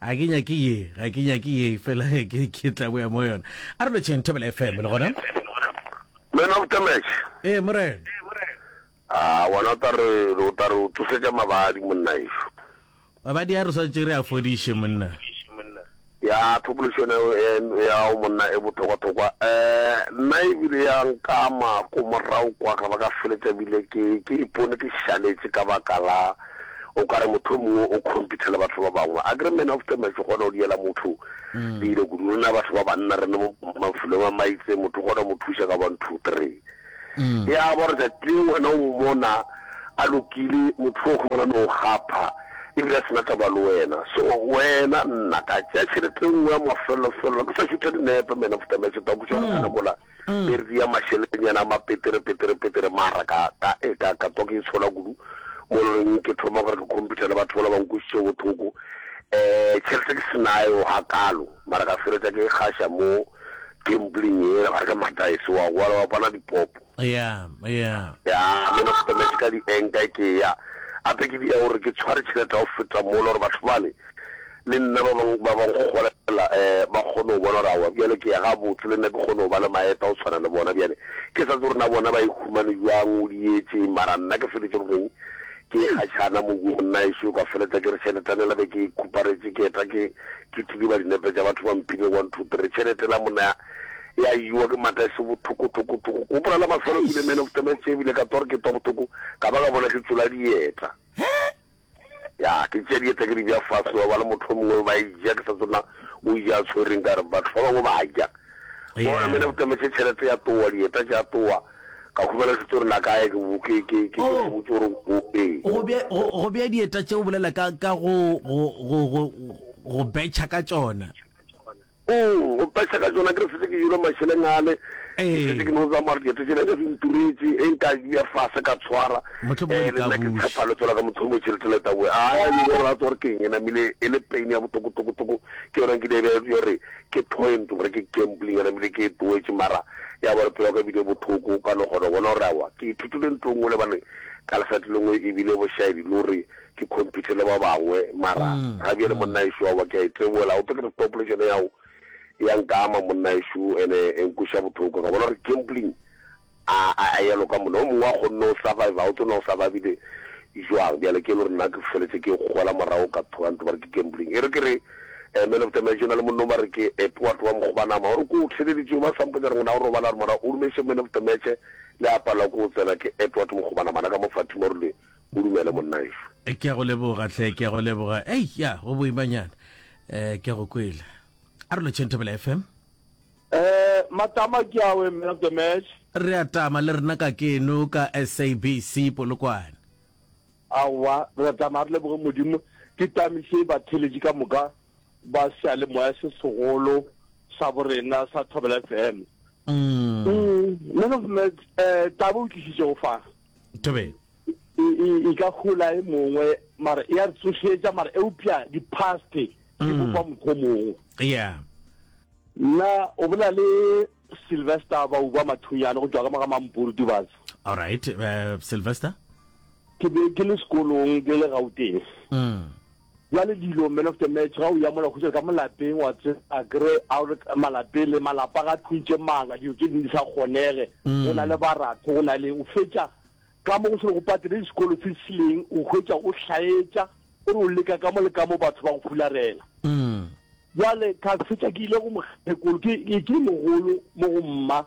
A ke nyake ye, ga ke nyake ye, fela ke, ke tla boya mo yona. A re lotšheng Thobela FM, le gona? Man of the match. Ee, morena. A wena o tla re, o tla re o tsosetša mabadi, monna ešo. Mabadi a re swanetše re a fodiše, monna. Ya, thokološo yona e, ya gago, monna, e bothokwa-thokwa. Um, nna e bile ya nkama ko morago kwa, ka ba ka feletša bile ke, ke ipone ke šaletše ka baka la. o ka re mohlomongwe o compete le batho ba bangwe a kere man of the match o kgona go diela motho mm. dilo kudu rena batho ba banna re ne mafulong a maitse motho o kgona mo thuša ka one two three mm. ya ba gore tsatsi le wena o mmona a lokile motho o kgona no gapha ebile a sena taba le wena so wena nna ka tšea tšhelete nngwe ya mafelelofelo ke sa šutha dinepe man of the match ta kuša gore kana mm. mola Be re dia mašelenyana a mapetere, petere, petere, mara ka, ka, e, ka, ka twa ke itshola kudu, mo loreng ke thoma gore ke computer le batho bala ba nkwešiše bothoko. Um, tšhelete ke se nayo gakaalo, mara ka feletša ke gaša mo gambling yela, ba re ke mataese, wa goala, wa pana dipopo. Eya, eya. Ya, me na setametse ka di-anchor ke ya, gape ke dia gore ke tshware tšhelete ya go feta mola, gore batho bale le nna ba bang ba ba nkgolela ba kgone go bona gore awa bjale ke ya gabotse, le nna ke kgone go ba le maeta go tshwana le bona. Bjale ke sa tse gore na bona ba e humane bjang, o di etseng, mara nna ke feletše go reng ke e kgatšhana mo go monnaešo, ka feletša ke re tšheletane la be ke e khuparetše, ke eta ke ke tlidiba dinepe tša batho ba mphilego one two three, tšhelete la monna ya ya iwa ke mata e se bothokothokotoko. Ke gopola la mafelo ke bile man of the match ebile ka twa gore ke twa bothoko ka ba ka bona ke tšola dieta. Ya, ke tšea dieta ke di bja fase, ba bala mohlomongwe ba e ja, ke sa tsona o e ja a tshwereng, ka re batho ba bangwe ba ja. Bona mena o tametše tšhelete ya towa, dieta tša towa, ka humana se tso re na kae, ke, ke, ke, ke, ke se botse gore o, ee. Go bja, go, go bja dieta tše o bolela ka, ka go, go, go, go, go betšha ka tšona. Ong, go phexa ka tšona, ke re setse ke jele mašeleng ale, ke Ee. šetše ke no tsamaya gore dieto tše leka se nturetše, e nka bea fase ka tshwara, Mohlomongwe ee, le nna ke Letabuši. tshepha le tswela ka motho o motšhe le tse Letaboe. A a bile gore a tswa gore ke eng e namile e le pain ya botokotokotoko, ke yona nkile bea yore ke point gore ke gambling e namile ke e tloetše mara ya ba gore pelo ya ka bile bothoko ka no kgona go bona gore awa ke ithutile ntho e nngwe lebaneng ka lesati lengwe e bile bošaedi lo re ke compete le ba bangwe mara ga bjale monna ešo wa ba ke a e tsebola go tlo ke population ya go ya nka ama monna ešo ene e nkwesha bothoko ka bona gore gambling a a ya loka monna o mongwe wa kgonne o survive o tsona o survivile jwang bjale ke le gore nna ke feletse ke gola morago ka thoga ntse ba re ke gambling e re ke re eh, man of the match na le monna ba re ke eh, poa tloa mokgobanama gore ko o theleditšego ba sampotsa re ngwana o robala re mora o rumeše man of the match le a pala ko o tsena ke eh, poa tlo mokgobanama na ka mo fatima rile O dumele monnaeso. Ke a go leboga hle, ke a go leboga. Ei, ya, go boimanyana. Eh, ke a go kwele. A re lotšheng Thobela FM. Eh, matama ke a we, man of the match. Re a tama le rena ka keno ka SABC Polokwane. Aowa, re a tama re leboge Modimo. Ke tamiše batheletši ka moka ba sealemoya se segolo sa borena sa Thobela FM. Mm. Mm, man of the match, eh, taba o tlišitšego fa. thobeng e ka gola e mongwe mara e a re tsošetša mara eupša di-paste di mm. bopa mokgwa mongwe yeah nna o bola le sylvester ba uba mathunyane go tšwa ka maga mampuru dibase alright uh, sylvester ke be ke le sekolong ke le gauteng mm. Bjale dilo, man of the match, ga o ya mola khutšela ka molapeng, wa tseba, akere a re malapeng le malapa ga tlung tše mmalwa, dilo tše ding di sa kgonege, go na le baratho, go na leng, o fetša ka mo go se le go patele disekolo tse sileng, o hwetša o hlaetša, o re o leka ka mo le ka mo batho ba go fularela. Bjale ka fetša ke ile go mokgekolo, ke ke mogolo mo go mma,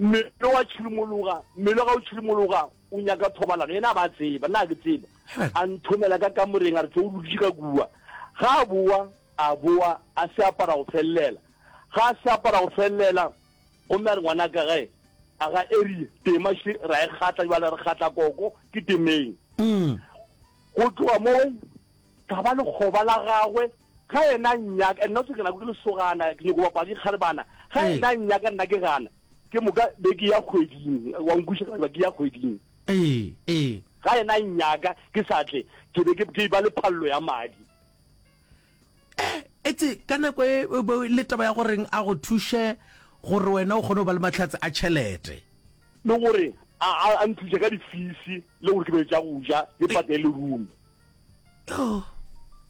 Mmele wa tšhilomologa, mmele ga o tšhilomologa, o nyaka thobalano, yena a ba tseba, nna ke tseba. A nthomela ka kamoreng, a re tlo o lokiše ka kua. Ga a boa, a boa, a se apara go felelela. Ga a se apara go felelela, gomme a re ngwanaka gae, a ga Erie, tema še, ra e kgatla jwale, re kgatla koko, ke temeng. Go tloga moo, ka ba lekgoba la gagwe. Ga yena a nnyaka, and not ke nako ke lesogana, ke nyoko bapala dikgarebana. Ga Ee. yena a nnyaka, nna ke gana. Ke moka be ke ya kgweding, wa nkwiša ka ba ke ya kgweding. Ee, ee. Ga yena a nnyaka, ke sa tle, ke be ke, ke ba le phallo ya madi. Etse ka nako e, e be le taba ya goreng a go thuše gore wena o kgone go ba le mahlatse a tšhelete. Le gore a, a, a nthuše ka difisi, le gore ke be le tša go ja, le patele room. Yoh.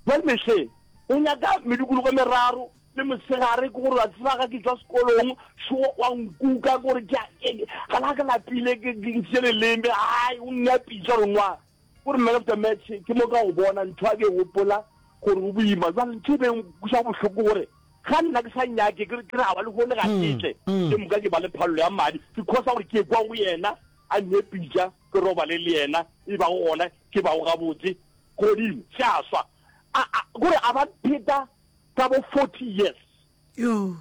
Bjale Mehle, o nyaka medukulugo e meraro le mosegare, ke gore wa tseba ga ke tšwa sekolong, šo wa nkuka, ke gore ke a eng, ga la ke lapile, ke ke ntšhitše leleme, hai, o nnyapitša gore nwa, ke gore man of the match, ke mo ka go bona, ntho ya ke e gopola, gore o boima, jwale ntho e beng kuša bohloko gore, ga nna ke sa nyake, ke re a ba lehono ga ke tle, ke moka ke ba le phallo ya madi, because ya gore ke ekwa go yena, a nnyepitša, Ke robale le yena, e bago gona ke bago gabotse, godimo, se a swa. A, a, gore a ba pheta ka bo forty years. Yoo.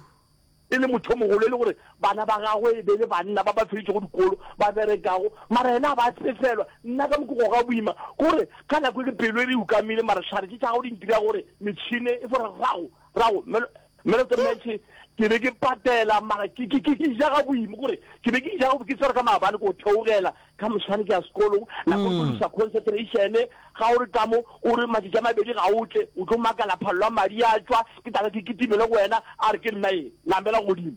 E le motho o mogolo, e le gore bana ba gagwe e be le banna ba ba feditšego dikolo, ba berekago, mara yena a ba sefelwa. Nna ka mokogo ga boima, gore ka nako e le pelo e re ukamile, mara hlare tše tša gago di ntira gore metšhine e fo re rago, rago, melo, Mere tse metšhe, ke be ke patela, mara ke, ke, ke, ke ja ga boima, gore, ke be ke ja ga ke tsere ka maabane ko theogela, ka moswane ke ya sekolong, nako mm. go lusa concentration, ga o re tamo, o re matšatši a mabedi ga o tle, o tlo makala phallo a madi a tšwa, ke tlabe ke kitimele go wena, a re ke nna e, namela godimo.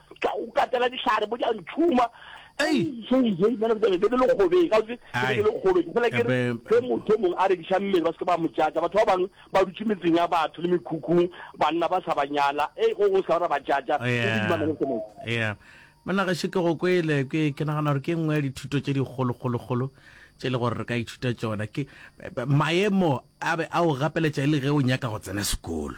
ka o katela dihlare bo ja ntšhuma ge motho mongwe a rekiša mmele ba seke ba mojatša batho ba bangwe ba dutše metseng ya batho le mekhukhung banna ba sa ba nyala e go go sa ra ba jatša ya monna gaše ke go kwele ke ke nagana gore ke nngwe ya dithuto tše dikgolokgolokgolo tše e le gore re ka ithuta tsona ke maemo a be a o gapeletša e le ge o nyaka go tsena sekolo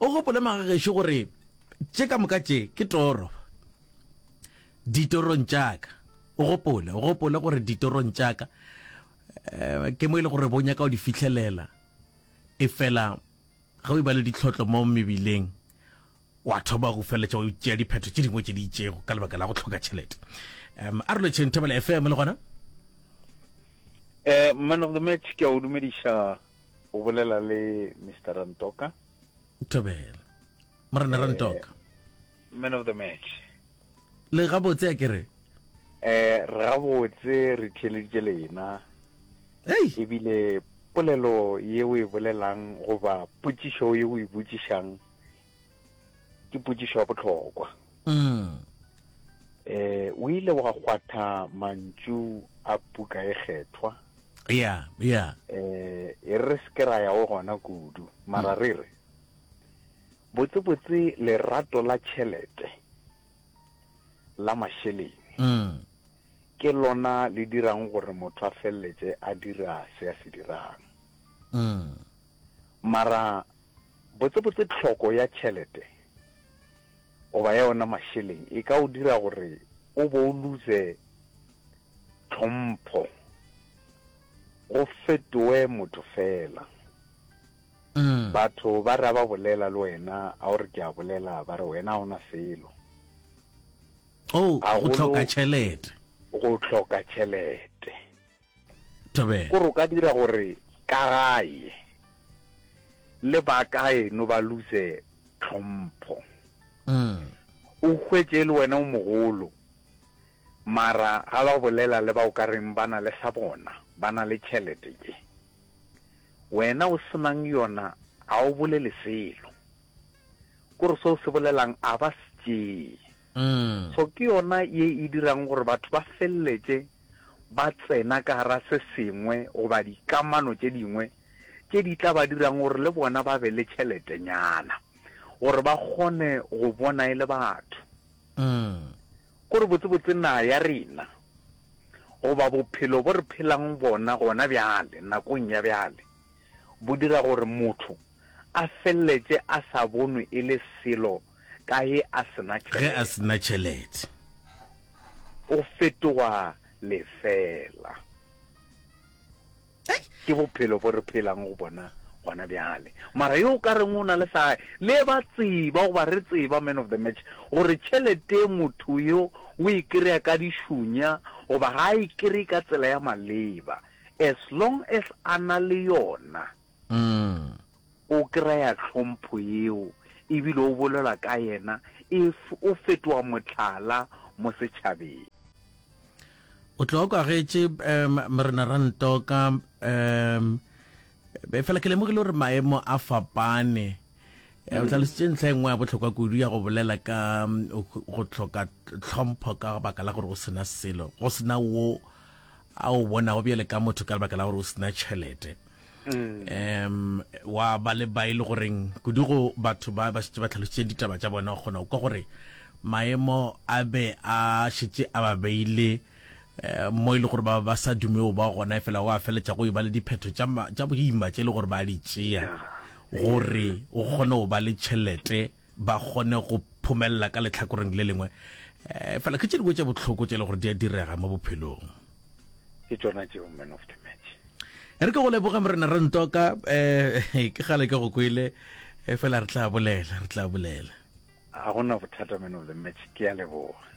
O gopole mage gešo gore tše ka moka tše ke toro. Ditorong tša ka. O gopole, o gopole gore ditorong tša ka, eh, ke mo e le gore bo nyaka o di fihlelela. E fela, ge o iba le ditlhotlo mo mebileng, wa thoma go feletša o tšea diphetho tše dingwe tše di itšego ka lebaka la go tlhoka tšhelete. Um, a re lotšheng Thobela FM le gona? Eh, Manogimet, ke a o dumediša. O bolela le Mister Rantoka. Thobela. Morena eh, Rantoka. Man of the match. Le gabotse a kere? Eh, re gabotse re theleditše lena. Hey. Ebile polelo ye o e bolelang goba potšišo ye o e botšišang Ke potšišo ya bohlokwa. Mm. Eh, o ile wa kgwatha mantšu a puka e kgethwa. Ya, ya. Eh, e re se ke ra ya go gona kudu, mara re re, botsebotse lerato la tšhelete, la mašeleng, Mm. ke lona le dirang gore motho a feleletše a dira se a se dirang. Mm. Mara Botsebotse tlhoko ya tšhelete goba ya ona mašeleng e ka o dira gore o bo o luze tlhompho, o fetoe motho fela. Batho ba re a ba bolela le wena, a o re ke a bolela, ba re wena a o na selo. Oh, go hloka tšhelete. Go hloka tšhelete. Thobela. Ko re o ka dira gore ka gae le ba kaeno ba luse tlhompho. O hwetše e le wena o mogolo, mara ga la go bolela le ba o ka reng ba na le sa bona, ba na le tšhelete tše. Wena o se nang yona ga o bolele selo. Ko re se o se bolelang a ba se tšee. Tso ke yona ye e dirago gore batho ba feleletše ba tsena ka gare se sengwe goba dikamano tše dingwe tše di tla ba dirago gore le bona ba be le tšheletenyana gore ba kgone go bona e le batho. Gore botsebotse naga ya rena goba bophelo bo re phelago bona gona bjale nakong ya bjale bo dira gore motho a feleletše a sa bonwe e le selo ka ge a se na tšhelete. Ge a se na tšhelete. O fetoga lefela. Hei! Ke bophelo bo re phelang go bona gona bjale. Mara yo o ka reng o na le sa gae, le ba tseba goba re tseba man of the match gore tšhelete motho yo o e kry-a ka dišunya goba ga a e kry-e ka tsela ya maleba, as long as a na le yona, O kry-a tlhompho yeo ebile o bolela ka yena if o fetoga mohlala mo setšhabeng. O tlo kwa getše Morena Rantoka fela ke lemogile gore maemo a fapane. O hlalositše ntlha e nngwe ya bohlokwa kudu ya go bolela ka go hloka tlhompho ka baka la gore go sena selo, go sena wo a o bonago bjale ka motho ka lebaka la gore o sena tšhelete. um wa ba le ba e le goreng kudu go batho ba ba šetse ba tlhalositse ditaba tša bona kgona o kwa gore maemo a be a šetse a ba beile eh, mo e le gore ba ba sa dumeo ba gona e fela go a feletša go e ba le diphetho tša ma- tša boima tše e le gore ba di tšea gore o kgone go ba le tšhelete ba kgone go phomelela ka letlhakoreng le lengwe. Fela ke tše dingwe tše bohloko tše le gore di a direga mo bophelong. Ke tšona tšeo, man of the match. E re ke go leboge Morena Rentoka, um ke kgale ke go kwele, fela re tla bolela, re tla bolela. Ga go na bothata, man of the match, ke a leboga.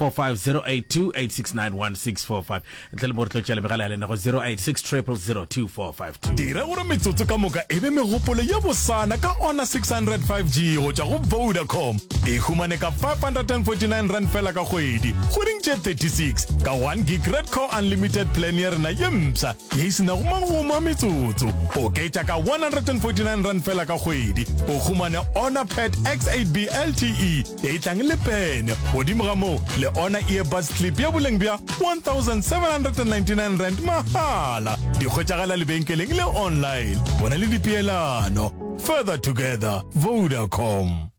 080082869164 ntle le mo re tlo tšela megala ya lena go 0860002452. Dira gore metsotso ka moka e be megopolo ye bosana ka Honor 600 5G go tšwa go Vodacom. E humane ka R549 fela ka kgwedi, kgweding tše 36, ka 1 gig Red Core Unlimited plan ya rena ye mpsha ye e se nago magomo a metsotso. Oketša ka R149 fela ka kgwedi, o humane Honor Pad X8B LTE, Etlang le pene. Godimo ga moo, le ona earbuds clip ya boleng bja 1799 rand mahala. Di hwetšagala lebenkeleng le online. Bona le dipeelano. Further together. Vodacom.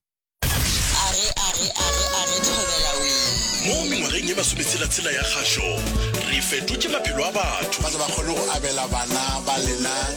Mo mengwageng ye masometshela-tshela ya kgašo, re fetotše maphelo a batho. Ba tle ba kgone go abela bana ba lena.